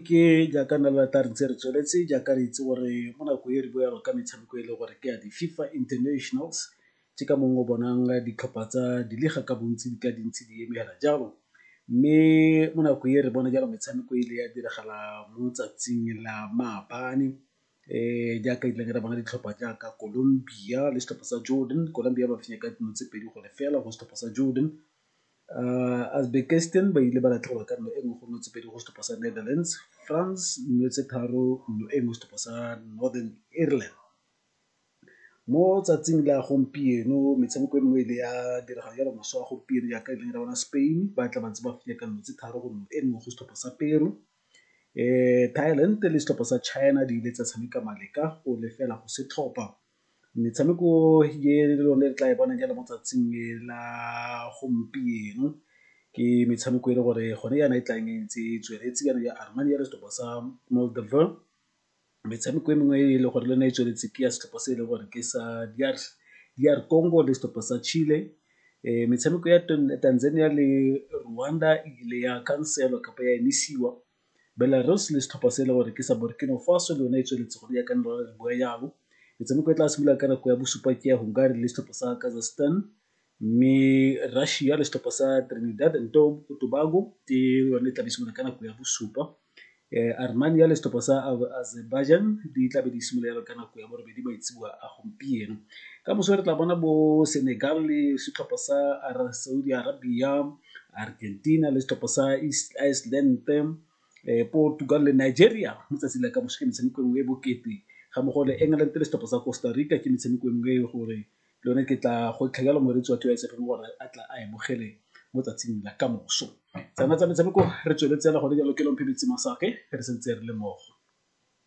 Ke jaaka nna le rata re ntse re tsweletse jaaka re itse gore mo nako e re bo yago ka metshameko e le gore ke ya di-FIFA Internationals ke ka mongwe o bonang ditlhopha tsa di le ga ka bontsi di ka dintsi di eme fela jalo. Mme mo nako e re bone jalo metshameko e le ya diragala mo tsatsing la maabane jaaka ile ka bona ditlhopha jaaka Columbia le setlhopha sa Jordan, Columbia ba fenya ka dino tse pedi go lefela go setlhopha sa Jordan. Uzbekistan ba ile ba latlhegelwa ka nno e nngwe go nno tse pedi go setlhopha sa Netherlands, France nno tse tharo nno e nngwe setlhopha sa Northern Ireland. Mo tsatsing la gompieno metshameko e mengwe e ne ya diragala jalo moswa wa gompieno jaaka e leng ya rona Spain ba tla ba ntse ba fenya ka nno tse tharo go nno e nngwe go setlhopha sa Peru. Thailand le setlhopha sa China di ile tsa tshameka maleka o lefela go setlhopa. Metshameko e le one le tla e bonang jaana mo tsatsing le la gompieno ke metshameko e le gore gone yana e tlang e ntse e tsweletse yana ya Armani ya setlhopha sa Molderbur. Metshameko e mengwe e le gore le yone e tsweletse ke ya setlhopha se e leng gore ke sa DR Congo le setlhopha sa Chile. Metshameko ya Tanzania le Rwanda e ile ya khanselwa kapa ya emisiwa. Belarus le setlhopha se e le gore ke sa Burkino Faso le yone e tsweletse go ya ka nelo le bua yalo. Metshameko e tla simolola ka nako ya bosupa ke ya Hungary le setlhopha sa Kazakhstan mme Russia le setlhopha sa Trinidad and Tobago ke yone e tla be simolola ka nako ya bosupa. Armenia le setlhopha sa Azerbaijan di tla be di simolola yalo ka nako ya borobedi maitseboa a gompieno. Ka moso re tla bona bo Senegal le setlhopha sa Saudi Arabia Argentina le setlhopha sa East Iceland-e, Portugal le Nigeria mo tsatsing la kamoso ke metshameko e nngwe e bokete ga mmogo le England le setlhopha sa Costa Rica ke metshameko e nngwe e le gore le yone ke tla gwetlha jalo moreetsi wa T_Y_S_F gore a tla a e bogele mo tsatsing la kamoso. Tsona tsa metshameko re tsweletse fela gone jalo ke Kelompho Metsi Masake re santse re le mmogo.